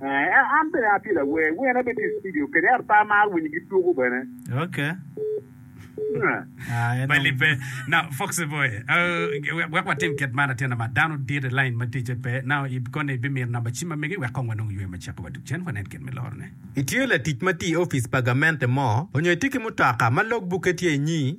An bene atye lawer, werna bene tye i studio kede ata amaro winyo ki tuku bene. Okay. Ah, en Bailey pe. Now, Foxy Boy, uh, wek, wek watim kit man atyena ma dano dit i lain ma ticce pe. Now, i kone ibimito namba cim ma mege wek kong wanong ywe ma ceko wa duk cen wanen kit me lorone. Itiyo latic ma tye i opic pa gamente mo, onyo itye ki mutoka ma logbukke tye i nyi?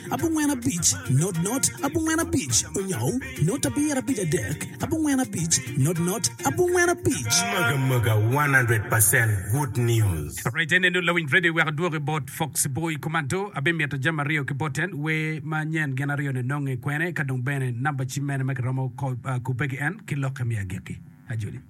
abongwen abic, not not, abongwen abic, onyou, not abiyera abic adek, abongwen abic, not not, abongwen abic. Mega mega 100 percent good news. Alright ene nu lawiny radio wek adwok i bot fox boy kumanto abimito jami aryo ki boten we ma nyen gin aryo ni nonge kwene ka dong bene number ci mene ma ki romo kubbe ki en ki lokke mi agikki ajoli.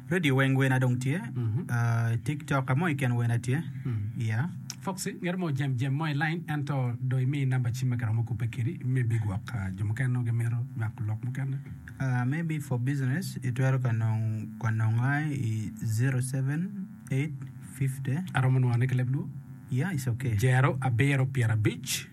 Radio weng wena dong tye. Mhm. Ah, TikTok ka mo i ken wena tye. Yeah. Foxy, ngeto mo jem jem mo i line ento do imi namba cim ma kiromo kubbe kedi me bigwok ah, jo mukene nongo gimito nywako lok mukene. Ah, maybe for business, itwero ka nong ka nonga i 07850. Aromo nwangone ki leb luo. Yeah, it's okay. Jero abiro pyera abic.